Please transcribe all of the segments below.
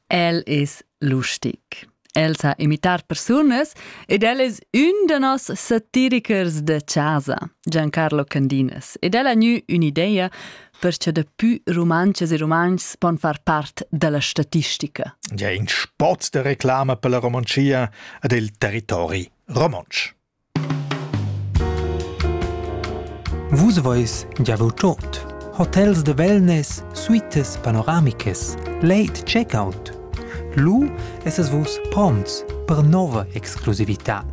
El es lustic. El sa imitar persunas ed el es ün da nos satirichers da chasa, Giancarlo Candinas, ed el ha gnü ün'idea per cha dapü rumantschas e rumantschs pon far part da la statistica. Ja, in spot da reclama per la Romontschia ed il territori romontsch. Vus veis giavau tot. Hotels de wellness, suites panoramicas, late checkout. Lu esses vus prompts per nova exclusivitad.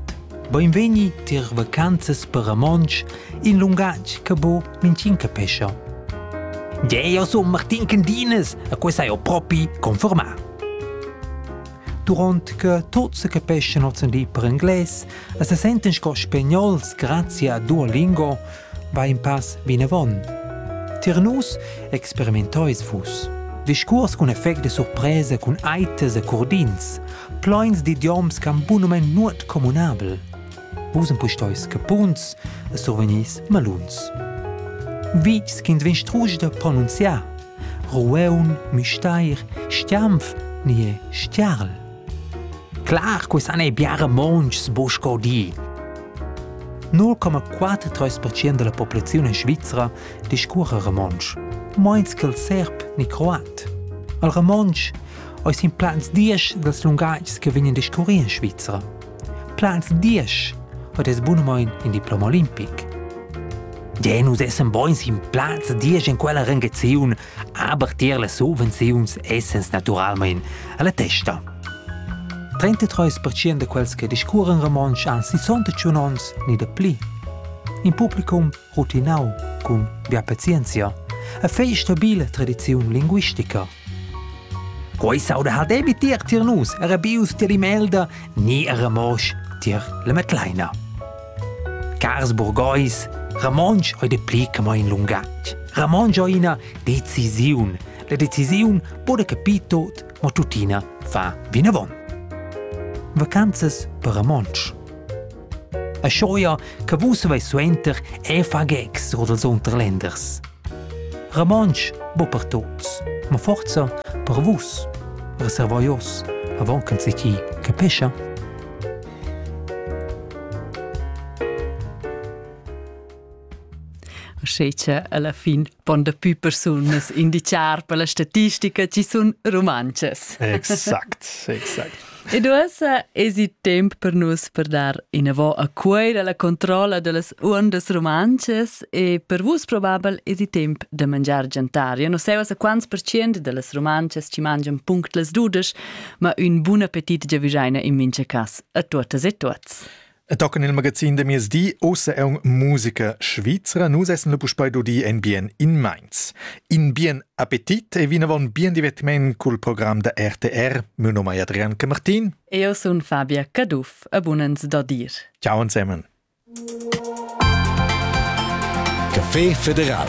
Beinvegni tier vacanzas per romontsch, in lungatg che bo mintgin capescha. Gie, io sun Martin Candinas e quei sai ho propi confermà. Durant che tuts se capeschan ozendi per inglais e se senten sco spagnols grazie a Duolingo, va in pass vinavon. Tier nus experimentais vus. Discurs cun effect de surpresa cun aites e curdins, ploins d'idioms cam bunumen nuot communabel. Vus empustois capuns e survegnis maluns. Vi sch'ins vegn strusch de pronunziar Rueun, Müstair, Stiampf nie Stiarl. Clar, que san ei biare monchs busco di. 0,43% della populazione svizzera discurre romontsch, meins che il serb ni croat. Il romontsch eis in plans dies dels lungatgs che vegnan discurri in Svizzera. Plaz diesch hat es bunamain in diploma olimpic. Ja, nus essan buns in plaz diesch in quella rangaziun, aber tier las subvenziuns essens naturalmein alla testa. 33% de quels che discurren romontsch han 61 onns ni de pli. In publicum rutinau cun bia pazienzia e fei stabile tradiziun linguistica. Quei sauda ha debi tier tier nus era bius tier Imelda ni era mosch tier la Metleina. Cars burgheis, Ramonsch oi de pli che mo in lungatg. Ramonsch oi ina decisiun. La decisiun bude capitot, ma tuttina fa vinavon. Vacanzas per Ramonsch. A Schoja che vus veis suenter è fagex oder els Unterländers. Romontsch bo per tots, ma forza per vus. Reservaios, avant che c'est chi che pescha. Schece alla fin pon daplü persunas indichar per la statistica chi sun rumantschas. Exact, exact. Ed uossa es il temp per nus per dar inavò a Cuoira la controlla dellas uondas rumantschas e per vus probabel es il temp da mangiar giantar. Io non sai uossa quants percient dellas rumantschas ci mangian punctlas dudesch, ma ün bun appetit giavüschaina in mincha cas a tuottas e tuots. E tocken il magazin de mies di ossa è un musica Svizzera, nus essen le puspei dudi en bien in Mainz. In bien appetit e vinavon bien divertiment col program da RTR. Mio nome è Adrian Camartin. Io sun Fabia Caduff e bunens da dir. Ciao insemen. Café Federal